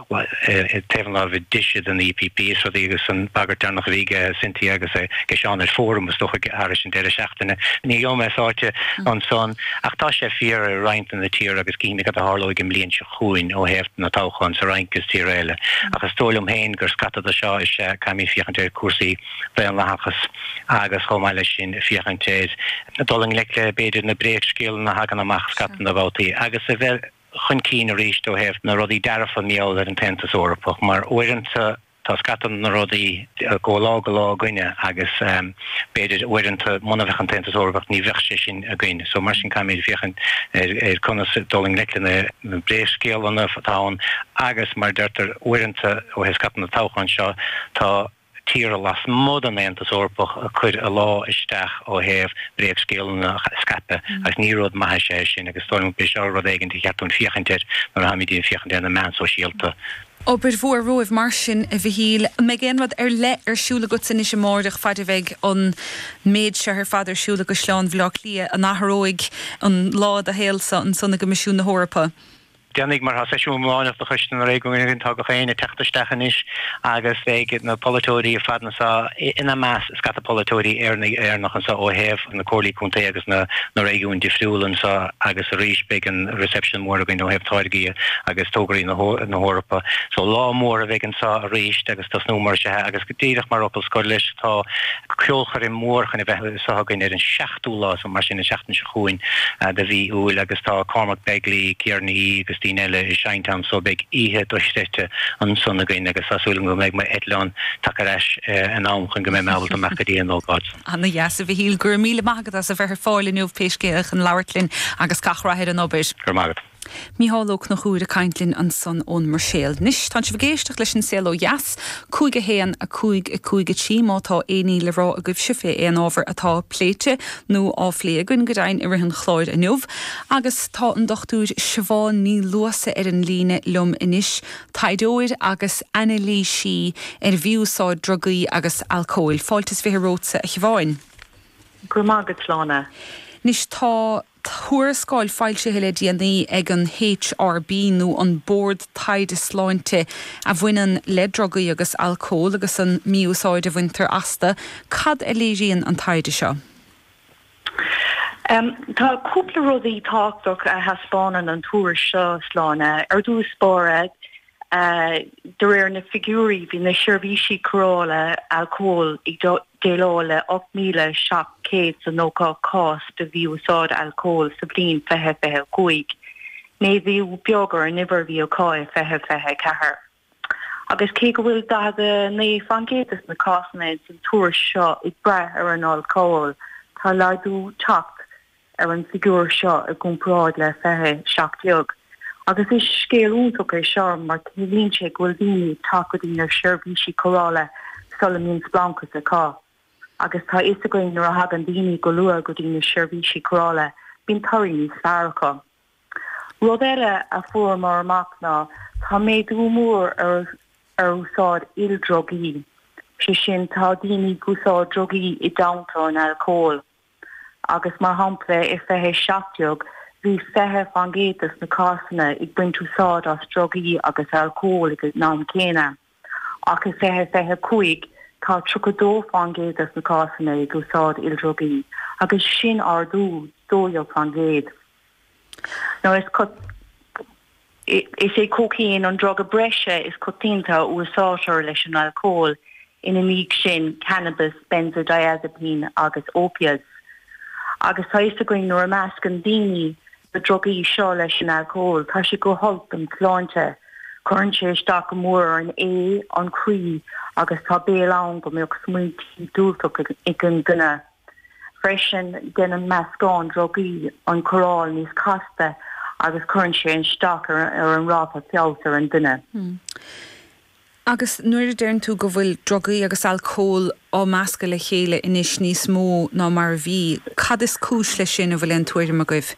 Ag taobh an láimhe deise den EPP is rudaí agus an bhagairt deireanach a bhí aige Cynthia agus é ag seasamh ar fóram is dócha ag thairis an deireadh seachtaine. Ní gheobhaidh mé sáite ansan ach tá sé fíor i roinnt de na tíortha agus cífimid cad a tharlóidh an bhliain seo chugainn ó thaobh na toghchán sa Fhrainc is tíortha eile. Ach is dóigh liom féin gur scata de seo is ea caithfimid féachaint ar cúrsaí daonlathachas agus chomh maith leis sin féachaint ar dul i ngleic le b'fhéidir na bréagscéalanna a thagann amach scata de bhabhtaí agus a bheith chun cinn arís ó thaobh na rudaí dearfacha mar gheall ar an tAontas Eorpach mar uaireanta tá scata de na rudaí ag dul ó lá go lá againne agus b'fhéidir uaireanta muna bheadh an tAontas Eorpach ní bheadh sé sin againn so mar sin caithfimid féachaint ar conas dul i ngleic le na bréagscéalanna atá ann agus mar a deirtear uaireanta ó thaobh scata na toghchán seo tá tíortha lasmuigh den Aontas Eorpach ag cur a ladhar isteach ó thaobh bréagscéalanna a scaipeadh agus ní rud maith is ea sin agus is dóigh liom go b'fhéidir seo rud éigin ba cheart dúinn féachaint air nuair a táimid ag féachaint ar na meáin sóisialta. Obair mhór romhaibh mar sin, a Mhichíl. An mbeidh aon rud ar leith ar siúl agatsa anois amáireach faid a bheidh an méid seo ar fad ar siúl i gCaisleán Bhaile Átha Cliath? An athróidh an lá i do shaol-sa ansan i gCoimisiún na hEorpa? Déanfaidh mar atá seisiún iomláineach de Choiste na Réigiún tá daoine ag teacht isteach anois agus beidh na polaiteoirí ar fad anseo, ina measc scata polaiteoirí Éireannach anseo ó thaobh na comhairlí contae agus na réigiún difriúla anseo agus arís beidh an reception mór againn ó thaobh táirgí agus tograí na hEorpa. So lá mór a bheidh anseo arís agus tosnóimid arís agus díreach mar fhocal scoir leis tá ceolchoirm mhór chun a bheith anseo againn ar an ochtú lá mar sin an seachtain seo chugainn de mhí Iúil agus tá Cormac Begley, Ciara Ní É agus daoine eile ag seinnt ann so beidh oíche dochreidte ansan againn agus tá súil agam go mbeidh m'eitleán tagtha ar ais in am chun go mbeidh mé ábalta dul amach go dtí an ócáid san. Ana dheas, a Mhichíl. Go raibh míle maith agat as a bheith ar fáil inniu pé scéal chun labhairt linn agus gach rath ar an obair. Go raibh maith agat. Mícheál Ó Cnochúir ag caint linn ansan ón mBruiséil. Anois, tánn sibh ag éisteacht leis An Saol Ó Dheas, 'cúig a haon, a cúig, a cúig a trí, má tá aon ní le rá agaibhse fé aon ábhar atá pléite nó á phlé againn, go deimhin, i rith an chláir inniu. Agus tá an Dr. Siobhán Ní Luasa ar an líne liom anois, taighdeoir agus anailísí ar mhí-úsáid drugaí agus alcóil. Fáilte is fiche romhatsa, a Shiobháin. Go raibh maith agat, a Shláine. Anois, tá. Tuarascáil foilsithe le déanaí ag an HRB nó an Bord Taighde Sláinte a bhaineann le drugaí agus alcól agus an mí-úsáid a bhaintear astu. Cad a léiríonn an taighde seo? Tá cúpla rudaí tábhachtach a thaispeánann an tuairisc seo, Sláine, ar dtús báire, De réir na figiúirí, bhí na seirbhísí cóireála alcóil ag déileáil le 8,790 cás de mhí-úsáid alcóil sa bhliain 2025, méadú beag ar an uimhir a bhí acu i 2024. Agus cé go bhfuil 49% de na cásanna san tuairisc seo ag brath ar an alcól, tá laghdú tagtha ar an bhfigiúr seo i gcomparáid le 20 17 agus is scéal iontach é seo mar ciallaíonn sé go bhfuil daoine ag teacht go dtí na seirbhísí cóireála sula mbíonn spleáchas acu agus tá fhios againn nuair a thagann daoine go luath go dtí na seirbhísí cóireála bíonn toradh níos fearr acu. Rud eile a fuaireamar amach ná tá méadú mór ar úsáid ildrugaí, sé sin tá daoine ag úsáid drugaí i dteannta an alcóil. agus mar shampla i 2017 bhí 20 fán gcéad dos na cásanna ag baint úsáid as drugaí agus alcól ag an am céanna ach i 2025 tá 32 fán gcéad dos na cásanna ag úsáid ildrugaí agus sin ardú 12 fán gcéad. Nó is é cócaon an druga breise is coitianta a úsáidtear leis an alcól, ina ndiaidh sin cannabas, benzodiazepine agus opiates. Agus tá 'fhios againn nuair a mheascann daoine na drugaí seo leis an alcól, tá sé go holc don tsláinte, cuireann sé isteach go mór ar an ae, an croí agus tá baol ann go mbeadh smaointí diúltach ag an duine. Freisin, déanann meascán drugaí an chóireáil níos casta agus cuireann sé isteach ar an ráta feabhas ar an duine. Agus nuair a deireann tú go bhfuil drugaí agus alcól á meascadh le chéile anois níos mó ná mar a bhí, cad is cúis leis sin, an bhfuil aon tuairim agaibh?